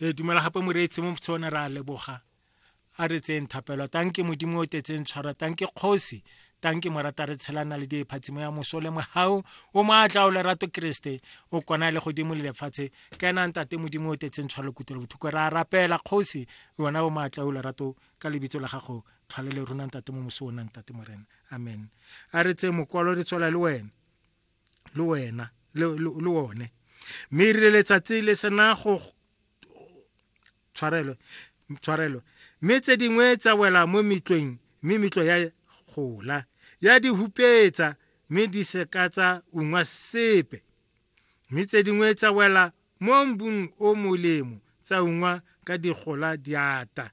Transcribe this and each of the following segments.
re dumela gape moreetsi mo tsone re a leboga a re tseyeng thapelo tanke modimo o tetseng tshwara tanke kgosi tanke morata re tshelana le diephatsimo ya moso le mogau o maatla o lerato keresete o kona le godimo le lefatshe ka enang tate modimo o tetseng tshwara lekutelo bothoko re a rapela kgosi yona o maatla o lerato ka lebitso la gago tlhole le runang tate mo moso o nang tate morena amen a re tseye mokwalo re tswela le wena le wena le le- le one mme e rile letsatsi le sena go tshwarelo tshwarelo mme tse dingwe tsa wela mo metlweng mme metlo ya gola ya di hupetsa mme di se ka tsa ungwa sepe mme tse dingwe tsa wela mo mbung o molemo tsa ungwa ka digola diata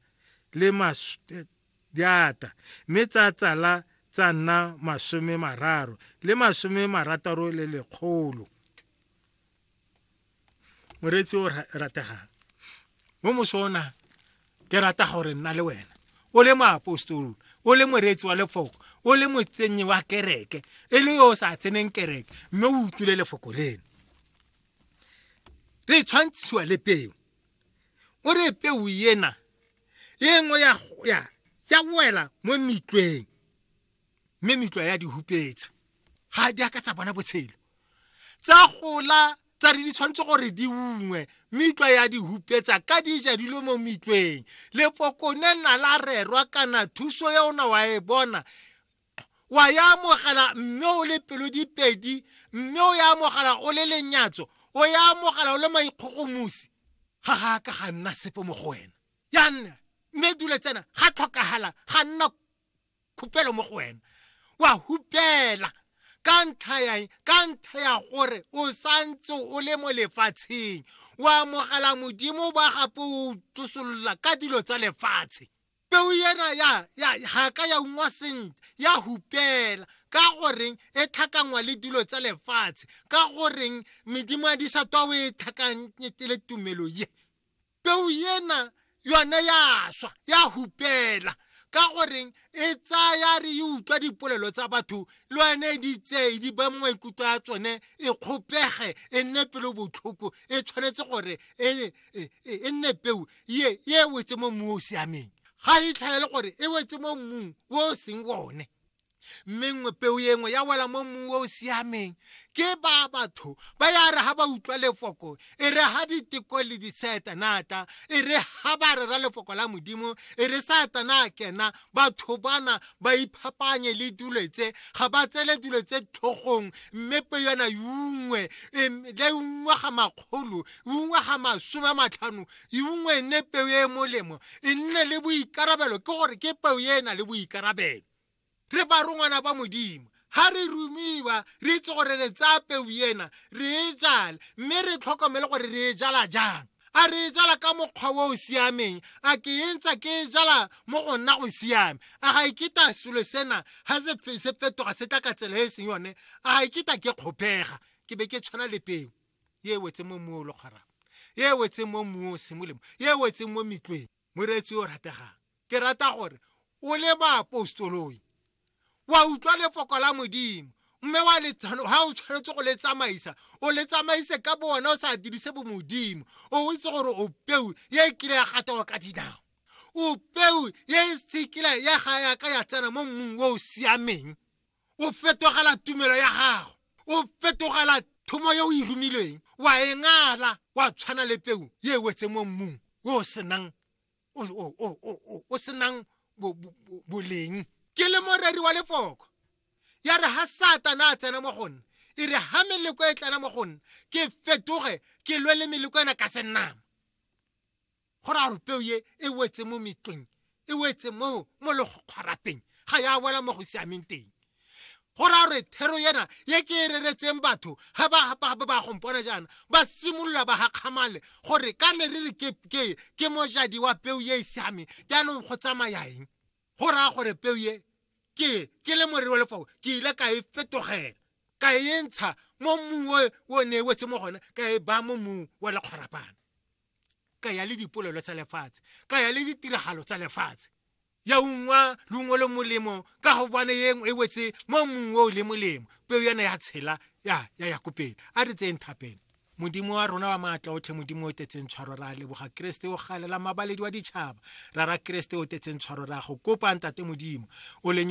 le mas- eh, di ata mme tsa tsala tsa nna masome mararo le masome marataro le lekgolo moreetsi o rategang mo mosona ke rata gore nna le wena o le moapostolo o le moreetsi wa lefoko o le motsenyi wa kereke e le yo o sa tseneng kereke mme o utlwile lefoko leno re tshwantshiwa le peo o re peu ena e nngwe ya ya ya wela mo mitlweng mme mitlwa ya di hupetsa ga di aka tsa bona botshelo tsa gola tsa re di tshwanetse gore di ungwe mitlwa ya di hupetsa ka di ja dilo mo mitlweng lepokone nna la rerwa kana thuso ya ona wa e bona wa ya amogela mme o le pelo dipedi mme o ya amogela o le lenyatso o ya amogela o le maikgogomosi ga ga ka ga nna sepe mo go wena ya nna mme dule tsena ga tlhokagala ga nna khupelo mo go wena wa hupela ka ntlha ya ka ntlha ya gore o santse o le mo lefatsheng o amogela modimo ba gape o tsosolola ka dilo tsa lefatshe peo ena ya ya ga ka ya ungwa sentle ya hupela ka goreng e tlhakangwa le dilo tsa lefatshe ka goreng medimo ya disatwa o e tlhakanyete le tumelo ye peo ena yone ya swa ya hupela ka goreng e tsaya re e utlwa dipolelo tsa batho le one e di tseye di ba mongwe ikutlwa ya tsone e kgopege e nne pelo botlhoko e tshwanetse gore e e, e, e nne peu ye ye e wetse mo mmung o o siameng ga e tlhaele gore e wetse mo mmung o o seng one mme nngwe peu e nngwe ya wela mo mmung o o siameng ke ba batho ba ya re ga ba utlwa lefoko e re ga diteko le disetanata e re ga ba rera lefoko la modimo e re satana kena batho bana ba iphapanye le dilo tse ga ba tsele dilo tse tlhogong mme pe yona yungwe le ungwe ga makgolo ungwe ga masome a matlhano ungwe e nne peo e e molemo e nne le boikarabelo ke gore ke peo e e na le boikarabelo re barongwana ba modimo ga re rumiwa re itse gore re tsaya peu ena re e jale mme re tlhokomele gore re e jala jang a re e jala ka mokgwa o o siameng a ke e ntsa ke e jala mo go nna go siame a ga iketa e selo sena ga se fetoga se tla ka tsela e e seng yone a ga iketa e ke kgopega ke be ke tshwana le peo e wetse mo mmu o le kgwarang e wetseng mo mmung o seng molemo e wetseng mo metlweng moreetsi o rategang ke rata gore o le baapostoloi wa utlwa lefoko la modimo mme wa letsano ha o tshwanetse go le tsamaisa o le tsamaise ka bo wena o sa dirise bo modimo o itse gore o peu ye e kile ya gatawa ka dinao o peu ye e sekile ya ga yaka ya tsena mo mmung o o siameng o fetogela tumelo ya gago o fetogela thomo yo o e romilweng wa e ngala wa tshwana le peu ye e wetse mo mmung o senang o senang boleng ke le moreri wa lefoko ya re ha satana a tsena mo go nna e re ha meleko e tlana mo go nna ke fetoge ke lwe le meleko ena ka senama go raya gore peo ye e wetse mo metlong e wetse mo mo legokgwarapeng ga ya wela mo go siameng teng go raya gore thero yena ye ke e reretseng batho ga ba ba gompona jaana ba simolola ba gakgamale gore ka ne re re ke mojadi wa peo ye e siameng jaanong go tsamaya eng go raya gore peo ye ke ke le morero wa lefao ke ile ka e fetogela ka e ntsha mo mmung o ne e wetse mo gone ka e baya mo mmung wa lekgwarapana ka ya le dipolelo tsa lefatshe ka ya le ditiragalo tsa lefatshe ya ungwa lungwe le molemo ka go bone yeng e wetse mo mongwe o le molemo peo yana ya tshela ya ya ya kopela a re tseng thapeng modimo wa rona wa maatla otlhe modimo o tetseng tshwaro ra leboga keresete o galela mabaledi wa ditšhaba ra ra keresete o tetseng tshwaro ra go kopa ntate modimo o lenyolo